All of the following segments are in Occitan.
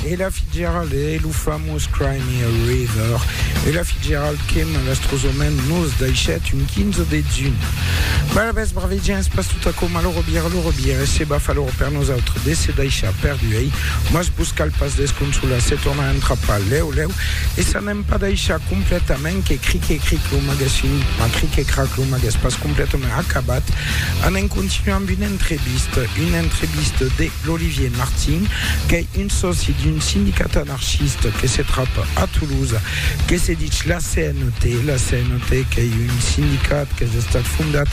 Ella Fitzgerald e lo famós Cry Me a River. Ella Fitzgerald que malastrosament nos daixèt un 15 de juny. Bala bes brave gens, pas tota coma lo robir, lo robir e se va fa l'or per nosaltres de se daixar perdu ei, mas vos cal pas desconsolar, se torna a entrapar leu leu e s'anem pas daixar completament que cric e cric lo magues fin, ma cric e crac lo magues pas complètement acabat, anem continuar amb una entrevista, una entrevista de l'Olivier Martin, qu'es un sòci d'un sindicat anarchiste que se trapa a Toulouse, que se ditz la CNT, la CNT qu'es un sindicat qu'es estat fondat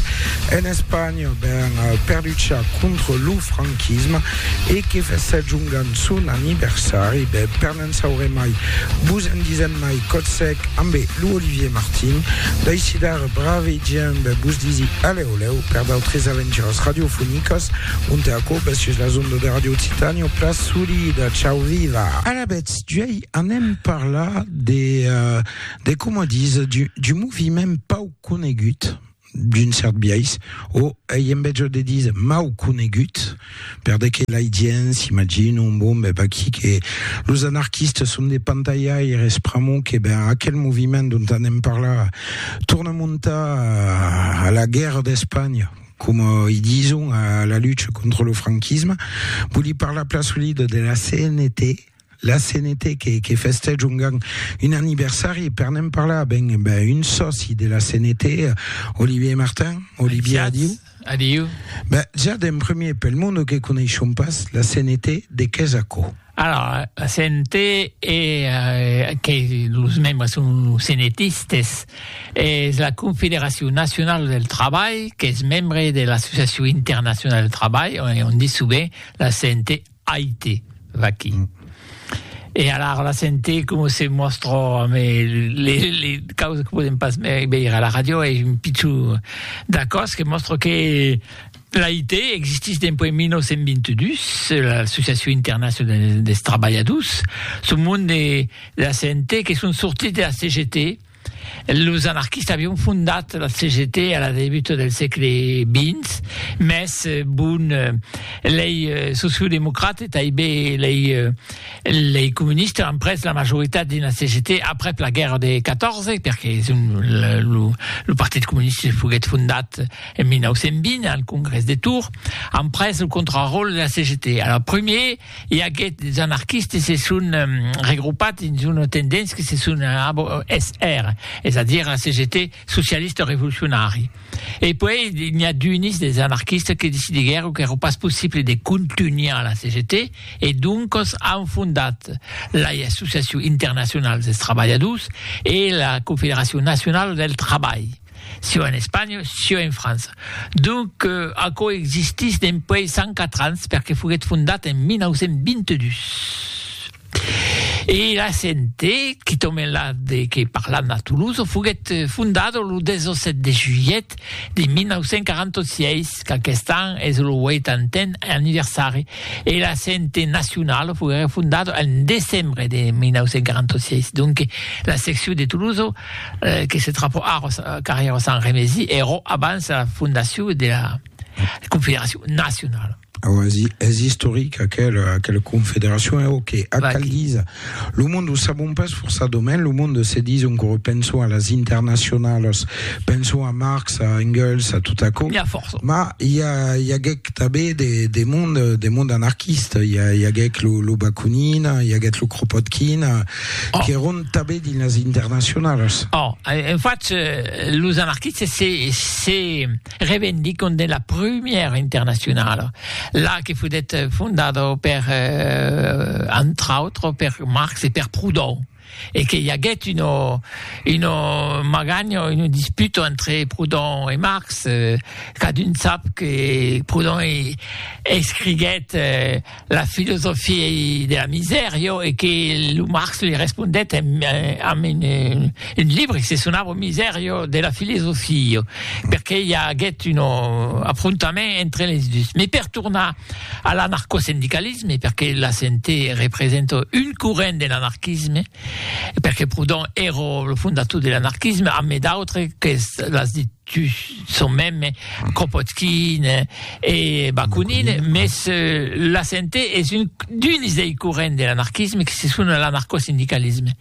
en Espanha ben, per luchar contra lo franquisme e que fesèt jongant son aniversari, ben, per N'en saurè mai, vos en disèm mai, còth sec, ambé lo Olivier Martin, d'aicidar brave gent de vos disi alèu lèu per d'autres aventuras radiofonicas, onte aquò bes sus las ondas de Radio Occitània o pla solida. Chau viva! Alabèths, d'uèi anem parlar de, de coma dis, du, du moviment pauc conegut, d'un cèrt biais, o ei en betjor de díser mau conegut, per de que l'ai dien, s'imagina un bon bèb aquí que los anarquistas son de pantalhaires pr'amor que ben aquel moviment dont anem parlar torna montar a la guèrra d'Espanha, coma i dison a la lucha contra lo franquisme, voli parlar plan solida de la CNT, la CNT que, que festège un, un aniversari, per n'en parlar, ben, ben un sòci de la CNT, Olivier Martin, Olivier, adiu. Adiu. Ben, ja d'en premier, pel monde que coneishon pas, la CNT de qué és aquò? Alors, la CNT est, euh, que les membres sont CNTistes, est la Confédération nationale del travail, qui est membre de l'Association internationale du travail, on dit souvent la CNT Aite, vaquí. E alara la sente coma se mòstra amé le, le causes que podem pas veire a la radio, e un pichó d'acòs que mòstra que l'Aite existís dempuèi 1922, l'Associacion Internacional des Trabalhadors, son monde de la sente que son sortits de la CGT, Los anarquistas avián fondat la CGT a la debuta del sègle xx, mès bon, lei sociodemocrats e taibe lei comunistas an pres la majoritat dins la CGT aprèp la guèrra de 14, perque lo Partit Comunista foguèt fondat en 1920 al Congrès de Tours, an pres lo contraròtle de la CGT. Alòs, primièr, i aguèt des anarquistes se son regropat dins una tendéncia que se son ABOSR, es a dire la CGT socialista revolucionari. E puèi n'i a d'unis des anarquistes que decidiguèron qu'èra pas possible de contunhar la CGT e doncas an fondat lai Associacion Internacional dels Trabalhadors e la Confederacion Nacionala del Trabalh. sieu en Espanha, sieu en França. Donc, aquò existís dempuèi 104 ans, perque foguèt fondat en 1922. E la CNT, qui tombe la de que parlam a Toulouse, foguèt fondada lo 17 de julhet de 1946, qu'aquest an es lo uitantèn anniversari, e la CNT nacionala foguèt fondada en decembre de 1946. Donc, la seccion de Toulouse que se trapò ara au carrèr au Sant Remesi, èrò abans era fondacion dera Confederacion Nacionala. Auasi, es istoric aquela, aquela Confederacion, e auqué ac Vaquí. cal díser. Lo monde, o sabon pas forçadament, lo monde, se dison qu'ora pensons a las internacionalas, pensons a Marx, a Engels, a tot aquò, N'hi a fòrça. mas i a, i aguèc tanben de, de monde, de monde anarquista, i a, i aguèc lo, lo Bakunin, i aguèt lo Kropotkin, qu'èron tanben dins las internacionalas. Oh, en fach, los anarquistes se, se revendicon de la prumièra internacionala, la que foguèt fondada per, entre autres, per Marx e per Proudhon, e que i aguèt una, una maganha, una disputa entre Proudhon e Marx, cadun sap que Proudhon escriguèt, la filosofia de la misèr, jo, e que lo Marx li respondèt en, amb un, un libre que se sonava Misèr, jo, de la filosofia, jo, perqué i aguèt un afrontament entre les dus. Me per tornar a l'anarcosindicalisme, perqué la CNT representa un corrent de l'anarquisme, perqué Proudhon èra lo fondator de l'anarquisme, amb d'autres qu'es, l'as dit, Tu son mème Kropotkin e Bakunin, mes la sente es un d'uns dei corrents de l'anarquisme que se sona l'anarcosindicalisme.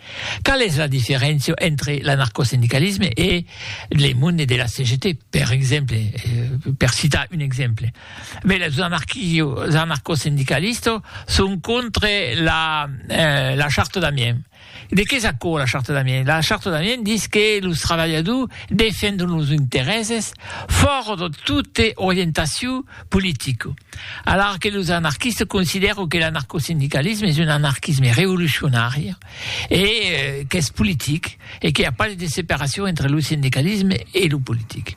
Qual es la diferéncia entre l'anarcosindicalisme e le monde de la CGT, per exemple, per citar un exemple? Beh, los anarquio, anarcosindicalistos son contre la, la charta d'Amiens. De qué es aquò la Charta d'Amiens? La Charta d'Amiens dis que los trabalhadors defendon los interèses fòrt de tota orientacion politica, alara que los anarquistes considèron que l'anarcosindicalisme es un anarquisme revolucionari e qu'es politic e qu'i a pas de separacion entre lo sindicalisme e lo politic.